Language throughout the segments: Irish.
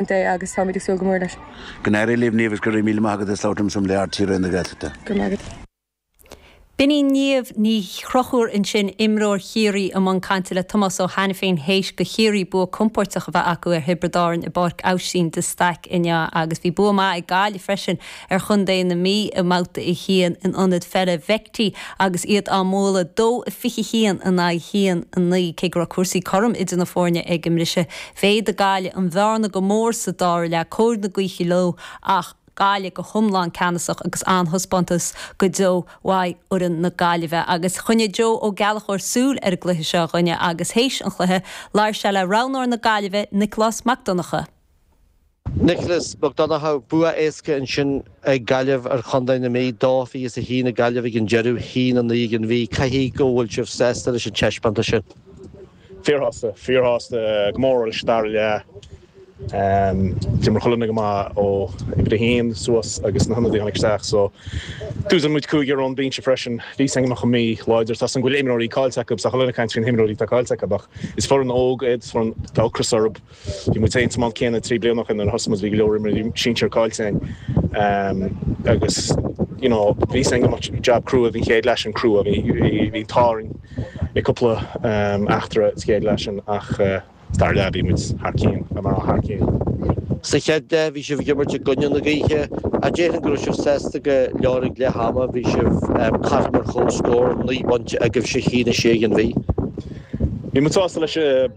Ant é agus táimid ag súil go mór leis. Go n-éirí libh Niamh agus go raibh míle maith agat as labhairt liomsa um le RTÉ Raidió na Gaeltachta. Go raibh maith agat. B'in í Niamh Ní Chonchúir ansin, imreoir Chiarraí i mbun cainte le Tomás Ó hAiniféin théis do Chiarraí bua compordach a bheith acu ar Thiobraid Árann i bPáirc Aibhistín de Staic inniu agus bhí bua maith ag Gaillimh freisin ar chontae na Mí i mbabhta a haon in ionad peile Bheigthí agus iad á mbualadh 2-21 in aghaidh 1-9. Cé go raibh cúrsaí cothrom idir na foirne ag an mbriseadh, Mhéadaigh Gaillimh an bhearna go mór sa dara leath cóir na gaoithe leo ach Gaillimh go hiomlán ceannasach agus an-taispeántas go deo uaidh fhoireann na Gaillimhe agus choinnigh Joe Ó Gallchóir súil ar an gcluiche seo dúinne agus théis an chluiche labhair sé le roghnóir na Gaillimhe, Nicolás Mac Donnacha. Nicholas Mac Donnacha, bua éasca ansin ag Gaillimh ar chontae na Mí, dó a fiche a haon ag Gaillimh ag an deireadh, a haon a naoi ag an Mhí. Caithfidh go bhfuil sibh sásta leis an taispeántas sin? Fíorshásta, fíorshásta go mór leis an dara leath. D'imir chuile dhuine go maith ó uimhir a haon suas agus na hionadaithe a tháinig isteach so d'úsáid muid cúigear ón bhinse freisin. Bhí a fhios againn go mbeadh an Mhí láidir, tá a fhios againn go bhfuil imreoirí cáillte acu, tá chuile dhuine ag caint faoi na himreoirí atá cáillte acu ach is foireann óg iad, tá ocras orthu. Bhí muid féin sa mbád céanna trí bliana ó shin nuair a thosaigh muid, bhí go leor imreoirí sinsir cáillte againn agus you know bhí a fhios againn go mbeadh jab crua, bhí an chéad leath sin crua a bhí, bhí an t-ádh orainn i cúpla eachtra sa chéad leath sin ach sa dara leath, bhí muid thar cionn na mná thar cionn. Sa chéad leath bhí sibh ag imirt i gcoinne na gaoithe ach déarfainn go raibh sibh sásta go leor ag leath ama, bhí sibh caithfidh mar chomhscór, naoi bpointe agaibhse, 1-6 ag an Mhí. Bhí muid sásta leis.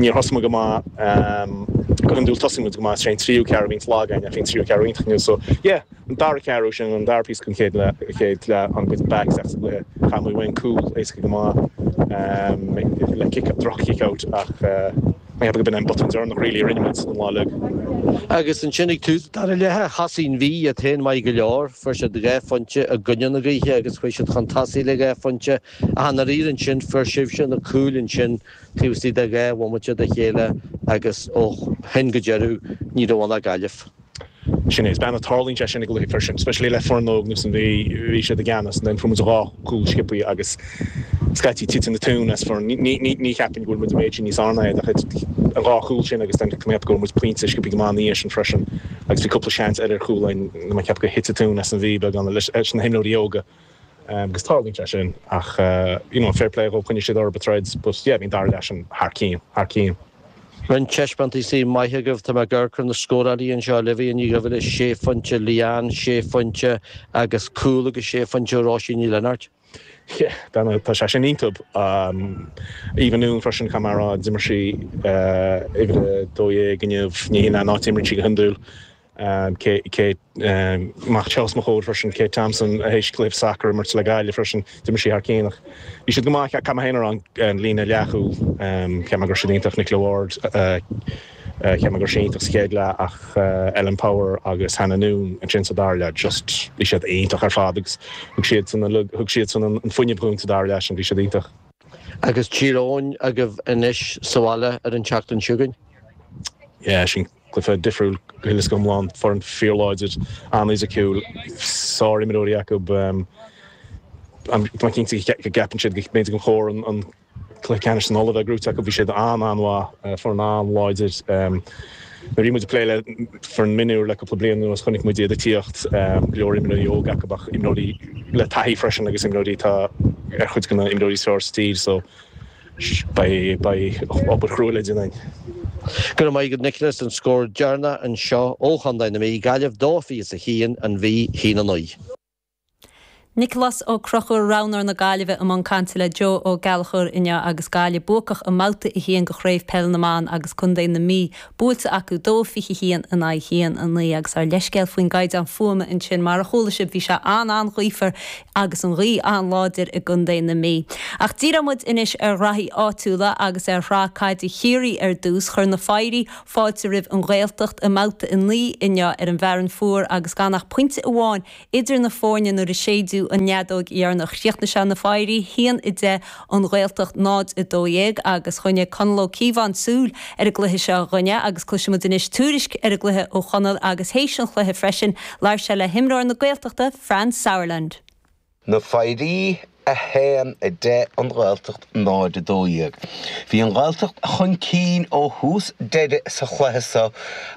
Níor thosaigh muid go maith, go hiondúil tosaíonn muid go maith is é an tríú ceathrú a bhíonns lag againn ach bhí an tríú ceathrú iontach inniu, so yeah, an dara ceathrú, sin an dara píosa den chéad chéad leath, tháinig muid back isteach sa gcluiche, chaith muid uainn, cúl, éasca go maith, le kick, droch kick out ach I have a bit an botún deireanach really a rinne muid an lá uilig. Agus ansin ag tús an dara leatha, thosaigh an Mhí iad féin maith go leor, fuair siad dhá phointe i gcoinne na gaoithe agus chuaigh siad chun tosaigh le dhá phointe ach ar ndóigh ansin fuair sibhse na cúil ansin Taobh istigh de dhá bhomaite de chéile agus ó shin go deireadh ní raibh ann ach Gaillimh. Sin é is minic a tharlaíonn sé sin i gcluiche freisin, especially le foireann óg nó san bhí siad i gceannas and then fuair muid dhá cúl sciopthaí agus scaití titeann an tóin as foireann. Ní ní cheapaim go bhfuil muid an méid sin níos fearr ná iad ach it an dhá chúl sin agus then cheap go bhfuair muid pointe sciopthaí go maith ina dhiaidh sin freisin agus bhí cúpla seans eile ar chúl againn, cheap gur thit an tóin as an Mhí beagán leis na himreoirí óga. agus tarlaíonn sé sin ach you know fair play dhóib choinnigh siad orthub a' troid but yeah I mean dara leath sin thar cinn, thar cinn. Roinnt taispeántaisí maithe agaibh, tá mé ag amharc ar na scóráilí anseo, Olivia Ní Dhuibhile, sé phointe, Leanne, sé phointe agus cúl agus sé phointe, Róisín Ní Lionáird. Yeah tá tá sé sin iontub. Eva Noone freisin caithfidh mé a rá d'imir sí uimhir a dó dhéag inniu, ní hí an áit a imríonn sí go hiondúil, Kate, amach os mo chomhair freisin, Kate Thompson, a th'éis cluiche sacair a imirt le Gaillimh freisin, d'imir sí thar cinn ach bhí siad go maith ach caithfidh mé féin a rá an líne leathchúl, cheap mé go raibh siad iontach, Nicola Ward, cheap mé go raibh sí iontach sa chéad leath ach Ellen Power agus Hannah Noone ansin sa dara leath just, bhí siad iontach ar fad agus thug siadsan an liug, thug siadsan an fuinneamh dhúinn sa dara leath sin, bhí siad iontach. Agus Tír Eoghain agaibh anois sa bhaile ar an tseachtain seo chugainn? Yeah, sin. cluife difriúil go huile is go hiomlán, foireann fíorláidir, an-fhisiciúil, sárimreoirí acu, táim cinnte go gceapann siad go mb'fhéidir gur chóir an cluiche ceannais sin Uladh a bheith gnóite acu, bhí siad an-an-mhaith, foireann an-láidir. Nuair a bhí muid ag plé le foireann mionúr le cúpla bliain anuas chonaic muid iad ag tíocht, go leor imreoirí óga acu ach imreoirí le taithí freisin agus imreoirí atá ar chuid de na himreoirí is fearr sa tír so, Beidh obair chruaidh le déanamh. Go raibh maith agat Nicholas an scór deireanach anseo ó Chontae na Mí, Gaillimh, dó fiche is a haon, an Mhí, haon a naoi. Nicholas Ó Conchúir Roghnóir na Gaillimhe i mbun cainte le Joe Ó Gallchóir inniu agus Gaillimh buacach i mBabhta 1 de Chraobh Peil na mBan agus Contae na Mí buailte acu dó, 21 in aghaidh haon, 9 agus ár leithscéal faoin gcaighdeán fuaime ansin, mar a chuala sibh, bhí sé an-an-ghaofar agus an ghaoth an-láidir i gContae na Mí. Ach díreoidh muid anois ar ghraithí áitiúla agus ar shraith caide Chiarraí ar dtús. Chuir na Foidhrí fáilte roimh An Ghaeltacht i mBabhta 9 inniu ar an bhFearann Fuar agus gan ach pointe amháin Idir na foirne nuair a séideadh an fheadóg dheireanach críochnaigh sé na Foidhrí 1 a 10 An Ghaeltacht 0 a 12 agus choinnigh Conall Ó Cíobháin súil ar an gcluiche seo dhúinne agus cloisimid anois tuairisc ar an gcluiche ó Chonall agus théis an chluiche freisin labhair sé le himreoir na Gaeltachta Franz Sauerland. Na Foidhrí 1, 10, An Ghaeltacht, 0, 12, Bhí an Ghaeltacht chun cinn ó thús deireadh sa chluiche so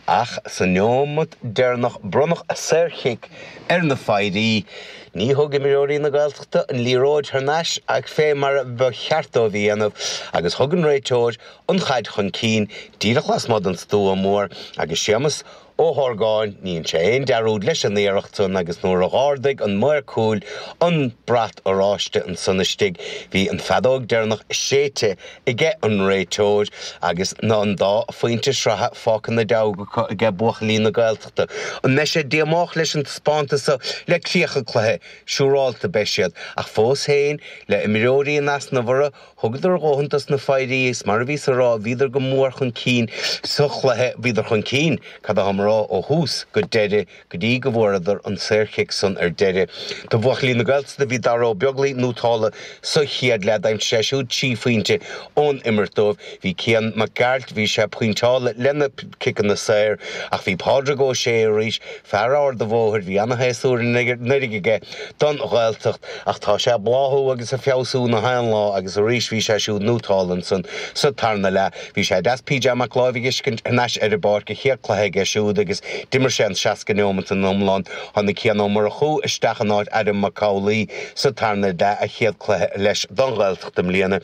ach sa neomat deireanach bronnadh saorchic ar na Foidhrí. Ní thug imreoirí na Gaeltachta an liathróid thar n-ais ach fé mar a ba cheart dóibh a dhéanamh agus thug an réiteoir an chaid chun cinn díreach lasmuigh den stua mór agus Séamus Ó Ó hArgáin, ní dhein sé aon dearúd leis an iarracht san agus nuair a dh'ardaigh an maor cúil an brat oráiste ansan istigh bhí an feadóg deireanach séidte aige an réiteoir agus tá an dá phointe sraithe fágtha ina ndeabhaidh acu aige buachaillí na Gaeltachta. An mbeidh siad díomách leis an taispeántas so le críoch an chluiche? Siúrálta beidh siad. Ach fós féin, le imreoirí in easnamh orthu, Thugadar a dhóthain dos na Foidhrí is mar a bhíos ag rá bhíodar go mór chun cinn sa chluiche, bhíodar chun cinn, cad atáim a rá, ó thús go deireadh go dtí go bhfuaireadar an saorchic san ar deireadh. Do bhuachaillí na Gaeltachta bhí Dara Ó Beaglaoi nótálta sa chéad leath d'aimsigh sé siúd trí phointe ón imirt dóibh, bhí Cian Mac Gearailt, bhí sé pointeálta lena chiceanna saor ach bhí Pádraig Ó Sé arís, Fear Ard an Bhóthair, bhí ana-shéasúr anuraidh aige don Ghaeltacht, ach tá sé ag bláthú agus ag feabhsú gach aon lá agus arís bhí sé siúd nótálta ansan sa tarna leath. Bhí sé deas PJ Mac Láimh a fheiscint thar n-ais ar an bpáirc, a chéad cluiche aige siúd agus d'imir sé an seasca neomat in iomlán. Tháinig Cian Ó Murchú isteach in áit Adam Mac Amhlaoibh sa tarna leath, a chéad cluiche leis don Ghaeltacht i mbliana.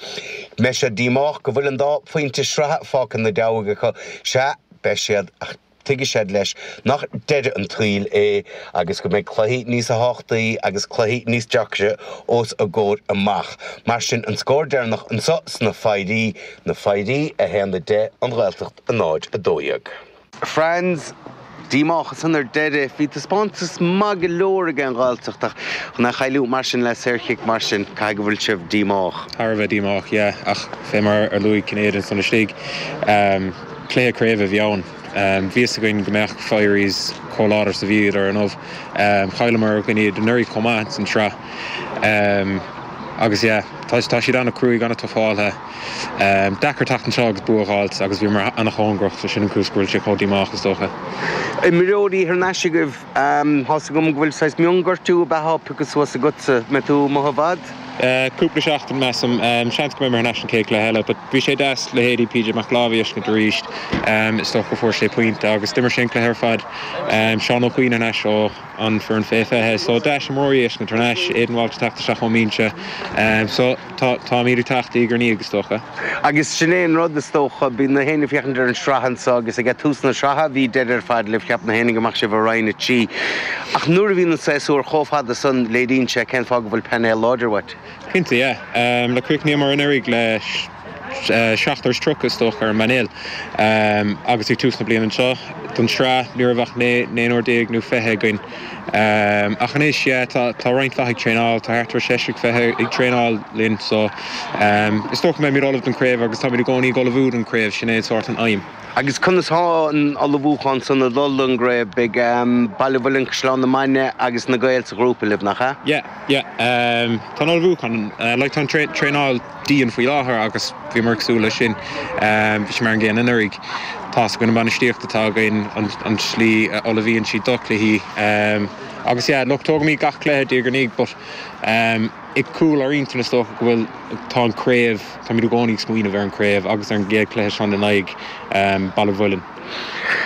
Mbeidh siad díomách go bhfuil an dá phointe sraithe fágtha ina ndeabhaidh acu. Sea, beidh siad, ach. Tuigfidh siad, leis, nach deireadh an tsaoil é agus go mbeidh cluichí níosa thábhachtaí agus cluichí níos deacra os a gcomhair amach. Mar sin, an scór deireanach anso sna Foidhrí, Na Foidhrí, 1, 10, An Ghaeltacht, 0, 12. Franz, díomách ansan ar deireadh. Bhí taispeántas maith go leor ag an Ghaeltacht ach chun é a chailliúint mar sin le saorchic mar sin, caithfidh go bhfuil sibh díomách? Thar a bheith díomách, yeah, ach fé mar ar luaigh Cinnéide ansan istigh, Cluiche craoibhe a bhí ann. Bhí a fhios againn go mbeadh Firies chomh láidir is a bhíodar ar ndóigh. Chailleamar i gcoinne iad anuraidh chomh maith ins an tsraith agus yeah, tá siad an-chruaidh, an-tuffáltha. Deacair teacht anseo agus bua a dh'fháilt agus bhíomar an-chóngarach so sin an chúis go bhfuil sé chomh díomách is dócha. Imreoirí gortaithe agaibh, tá's agam go bhfuil saghas mionghortú beag pioctha suas agatsa, an mbeidh tú amuigh i bhfad? Cúpla seachtain, measaim. Seans go mbeidh mé thar n-ais an chéad cluiche eile. But bhí sé deas, leithéidí PJ Mac Láimh a fheiscint arís. Is dócha go bhfuair sé pointe agus d'imir sé an cluiche ar fad. Seán Ó Cuinn thar n-ais ó an foireann fé 20. So deas imreoirí a fheiscint thar n-ais. Aidan Walsh ag teacht isteach ón mbinse. So táimíd ag teacht diaidh ar ndiaidh is dócha. Agus sin é an rud, is dócha. Bíonn gach éinne ag féachaint ar an sraith anso, agus ag tús na sraithe bhí deireadh ar fad libh. Cheap gach éinne go mbeadh sibh i Roinn 3. Ach nuair a bhíonn an séasúr chomh fada san, léiríonn sé cén fáth go bhfuil painéal láidir uait. Cinnte, yeah. Like, chríochnaíomar anuraidh le seachtar is tríocha, is dócha, ar an bpainéal. Agus ag tús na bliana anseo, don tsraith, ní raibh ach naonúr déag nó fiche againn. Ach anois tá roinnt mhaith ag traenáil, tá thart ar sheisear is fiche ag traenáil linn so is dócha go mbeimid ullamh don chraobh agus táimid i gcónaí ag ullmhú don chraobh, sin é sórt an aidhm. Agus conas tá an ullmhúchán san ag dul don gcraobh? Beidh Baile an Mhuilinn, Caisleán na Mainge agus na Gaeil sa ghrúpa libh, nach ea? Yeah, yeah. Tá an ullmhúchán, like tá an traenáil. dian faoi láthair agus bhíomar ag súil leis sin. Bhí sé mar an gcéanna anuraidh. Tá's againn an bainistíocht atá againn, an slí a ullmhaíonn siad do chluichí agus yeah look tógaimid gach cluiche diaidh ar ndiaidh but i gcúl ár intinn is dócha go bhfuil, tá an chraobh, táimid i gcónaí ag smaoineamh ar an chraobh agus ar an gcéad chluiche seo in aghaidh Baile an Mhuilinn.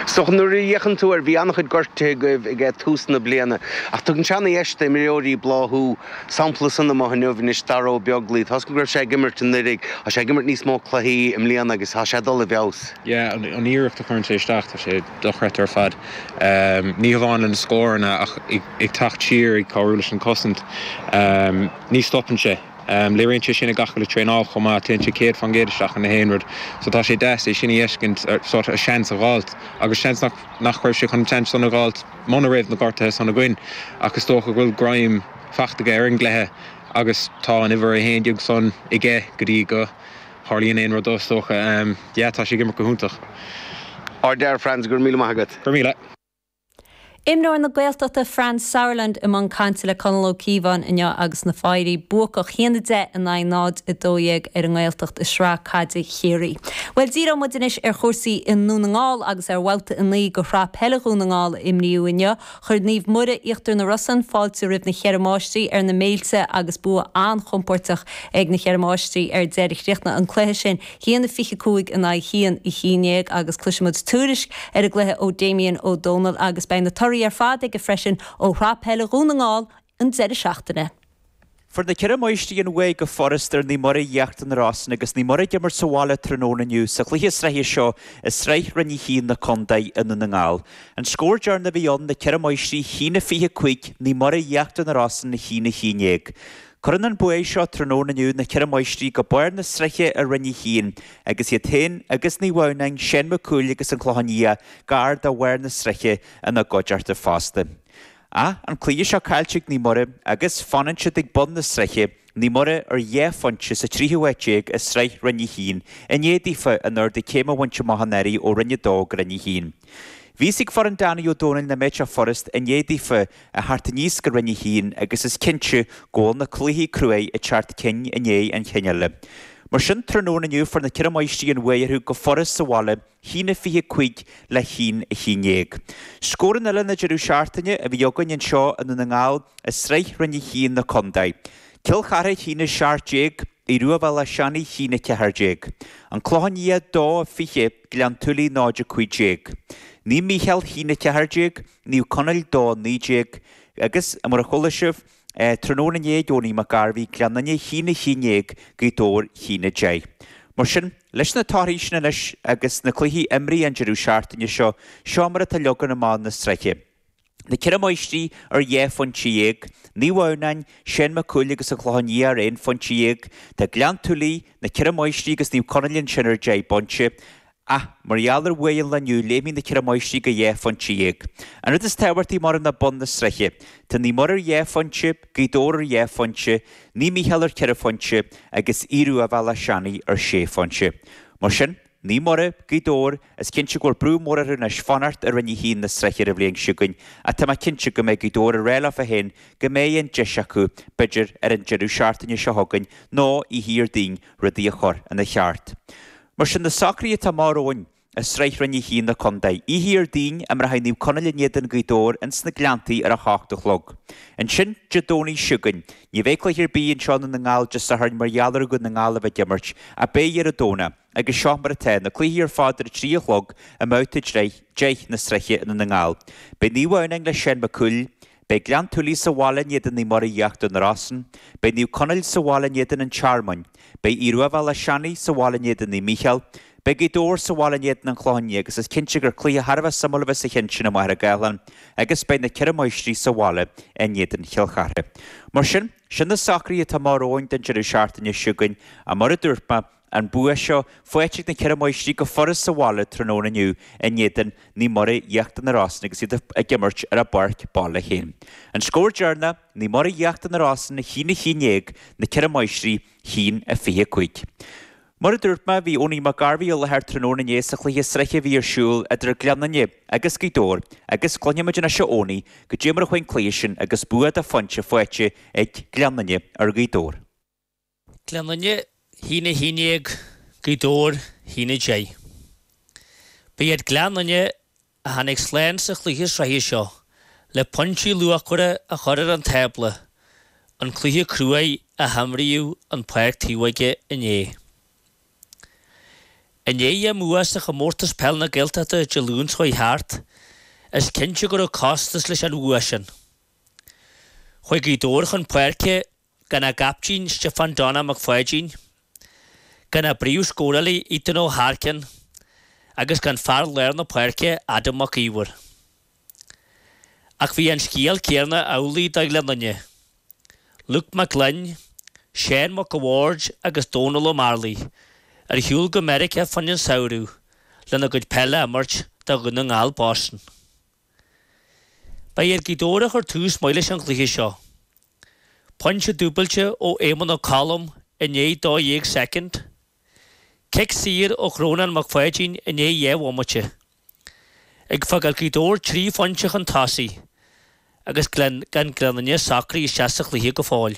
So nuair a fhéachann tú ar, bhí an-chuid gortuithe agaibh ag tús na bliana ach tugann sé ana-dheis d'imreoirí bláthú, Sampla san amach inniu anois d'fhear ó Bheaglaoi. Toisc go raibh sé ag imirt anuiridh, tá sé ag imirt níos mó cluichí i mbliana agus tá sé ag dul i bhfeabhas. An iarracht a chuireann sé isteach, tá sé dochreidte ar fad. Ní hamháin le na scóranna ach ag teacht siar, ag cabhrú leis an gcosaint. Ní stopann sé. Léiríonn sé sin i gach uile traenáil chomh maith. Téann sé céad fán gcéad isteach in aon rud. So tá sé deas é sin a fheiscint, seans a dh'fháilt agus seans nach raibh sé chun an tseans san a dh'fháilt. muna raibh na gortuithe san againn, ach is dócha go bhfuil greim fachta aige ar an gcluiche agus tá an uimhir a haon déag san aige go dtí go tharlaíonn aon rud do, is dócha. Yeah, tá sé ag imirt go hiontach. Ardfhear Franz, go raibh míle maith agat. Go raibh míle. Imreoir na Gaeltachta Franz Sauerland i mbun cainte le Conall Ó Cíobháin inniu agus na Foidhrí buacach, 1-10 in aghaidh 0-12 ar an nGaeltacht i Sraith Caide Ciarraí. Bhuel, díreoidh muid anois ar chúrsaí i nDún na nGall agus ar bhabhta a naoi de Shraith Peile Dhún na nGall a imríodh inniu. Chuir Naomh Muire, Íochtar na Rosann, fáilte roimh na Cheithre Máistrí ar na Méilte agus bua an-chompóirteach ag na Cheithre Máistrí ar deireadh. Chríochnaigh an cluiche sin a haon a 25 in aghaidh a haon a haon déag agus cloisfimid tuairisc ar an gcluiche ó Damien Ó Dónaill agus beidh na torthaí ar fad aige freisin ó Shraith Peile Dhún na nGall an deireadh seachtaine. Fuair na Ceithre Máistrí an bhuaidh go furast ar Naomh Muire Íochtar na Rosann agus Naomh Muire ag imirt sa bhaile tráthnóna inniu sa chluiche sraithe seo i Sraith Roinn 1 na Contae i nDún na nGall. An scór deireanach a bhí ann Na Ceithre Máistrí a haon a 25 Naomh Muire Íochtar na Rosann a haon a 11. Cuireann an buaidh seo tráthnóna inniu na Ceithre Máistrí go barr na sraithe i Roinn 1 agus iad féin agus Naomh Adhamhnáin, Seán Mac Cumhaill agus An Clochán Liath gar do bharr na sraithe ina gcuideachta fosta. Ach an cluiche seo caillte ag Naomh Muire agus fanann siad ag bun na sraithe, Naomh Muire ar dhá phointe sa tríú háit déag i sraith Roinn 1 i ndiaidh daofa an t-ardú céime a bhaint amach anuraidh ó Roinn 2 go Roinn 1. Bhí a fhios ag foireann Danny Ó Dónaill nach mbeadh sé furast i ndiaidh daofa a theacht aníos go Roinn 1 agus is cinnte go bhfuil na cluichí cruaidh ag teacht ceann i ndiaidh an chinn eile. Mar sin tráthnóna inniu fuair na Ceithre Máistrí an bhuaidh orthu go furast sa bhaile Haon a fiche cúig le haon a haon déag. Scóranna eile na deireadh seachtaine a bhí againn anseo i nDún na nGall i sraith roinn a haon na condae. Cill Charthaigh a haon a seacht déag, Aodh Ruadh Bhéal Átha Seanaidh a haon a ceathair déag. An Clochán Liath dó a fiche, Gleann tSúilí náid a cúig déag. Naomh Mícheál a haon a ceathair déag, Naomh Conaill dó a naoi déag, agus, mar a chuala sibh, Tráthnóna inné ag Eoghanaí Mac Gairbhigh Gleann Fhinne a haon a haon déag Gaoth Dobhair a haon a deich. Mar sin, leis na torthaí sin anois agus na cluichí imrithe an deireadh seachtaine seo, seo mar atá leagan amach na sraithe. Na ceithre máistrí ar dhá phointe dhéag, Naomh Adhamhnáin, Seán Mac Cumhaill agus an Clochán Liath ar aon phointe dhéag. Tá Gleann tSúilí, na ceithre máistrí agus Naomh Conaill ansin ar deich bpointe. Ach mar gheall ar bhuaidh an lae inniu, léimfidh na ceithre mháistrí go dhá phointe dhéag. An rud is tábhachtaí maireann ná bun na sraithe. Tá Naomh Muire ar dhá phointe, Gaoth Dobhair ar dhá phointe, Naomh Mícheál ar ceithre phointe, agus Aodh Ruadh Bhéal Átha Seanaidh ar sé phointe. Mar sin, Naomh Muire, Gaoth Dobhair, is cinnte go bhfuil brú mór orthu anois fanacht i Roinn 1 na sraithe ar an bhliain seo chugainn, ach tá mé cinnte go mbeidh Gaoth Dobhair ag rá leo féin go mbeidh an deis acu, b'fhéidir ar an deireadh seachtaine seo chugainn nó oíche Dhéardaoin, rudaí a chur ina cheart. Mar sin, na socruithe atá amach romhainn i sraith roinn a haon na contae, oíche Dhéardaoin, imreochaidh Naomh Conaill in éadan Gaoth Dobhair ins na Gleanntaí ar a hocht a chlog. Ansin, Dé Domhnaigh seo chugainn. Ní bheidh cluiche ar bith anseo i nDún na nGall Dé Sathairn mar gheall ar Dhún na nGall a bheith ag imirt, ach beidh ar an Domhnach, agus seo mar atá, na cluichí ar fad ar a trí a chlog i mbabhta deich na sraithe i nDún na nGall. Beidh Naomh Adhamhnáin le Seán Mac Cumhaill, Beidh Gleann tSúilí sa bhaile in éadan Naomh Muire Íochtar na Rosann, beidh Naomh Conaill sa bhaile in éadan an Tearmainn, beidh Aodh Ruadh Bhéal Átha Seanaidh sa bhaile in éadan Naomh Mícheál, beidh Gaoth Dobhair sa bhaile in éadan an Chlocháin Léith agus is cinnte gur cluiche thar a bheith suimiúil a bheas sa cheann sin i Machaire Gathlán agus beidh na Ceithre Máistrí sa bhaile in éadan Chill Chartha. Mar sin, sin na socruithe atá amach romhainn don deireadh seachtaine seo chugainn, mar a dúirt mé, an bua seo faighte ag na Ceithre Máistrí go furas sa bhaile tráthnóna inniu in éadan Naomh Muire, Íochtar na Rosann agus iad ag imirt ar a bpáirc baile féin. An scór deireanach, Naomh Muire Íochtar na Rosann a haon a haon déag, na Ceithre Máistrí a haon a fiche cúig. Mar a dúirt mé, bhí Eoghanaí Mac Gairbhigh i láthair tráthnóna inné sa chluiche sraithe a bhí ar siúl idir Gleann Fhinne agus Gaoth Dobhair agus cluinfimid anois ó Eoghanaí goidé mar a chuaigh an cluiche sin agus bua de phointe faighte ag Gleann Fhinne ar Ghaoth Dobhair. Gleann Fhinne, a haon a haon déag, Gaoth Dobhair, a haon a deich. Ba iad Gleann Fhinne a tháinig slán sa chluiche sraithe seo le pointí luachmhara a chur ar an tábla, an cluiche cruaidh a himríodh i bPáirc Taobhóige inné. I ndiaidh a mbua sa Chomórtas Peile na Gaeltachta Dé Luain seo thart, is cinnte go raibh costas leis an bhua sin. Chuaigh Gaoth Dobhair chun páirce Gan a gcaiptín Stiofán Donna Mac Pháidín, gan a bpríomhscórálaí Ethan Ó hAirceann agus gan fear láir na páirce Adam Mac Íomhair. Ach bhí an scéal céanna amhlaidh do Ghleann Fhinne, Luke Mac Gloinn, Seán Mac a' Bhaird agus Dónall Ó Mearlaigh ar shiúl go Meiriceá fá choinne an samhradh lena gcuid peile a imirt do Dhún na nGall, Boston. Ba iad Gaoth Dobhair a chuir tús maith leis an gcluiche seo. Pointe dúbailte ó Éamonn Ó Colm i ndiaidh dó dhéag soicind, cic saor ó Chrónán Mac Pháidín i ndiaidh dhá bhomaite, ag fágáil Gaoth Dobhair trí phointe chun tosaigh agus gan Gleann Fhinne socraithe isteach sa chluiche go fóill.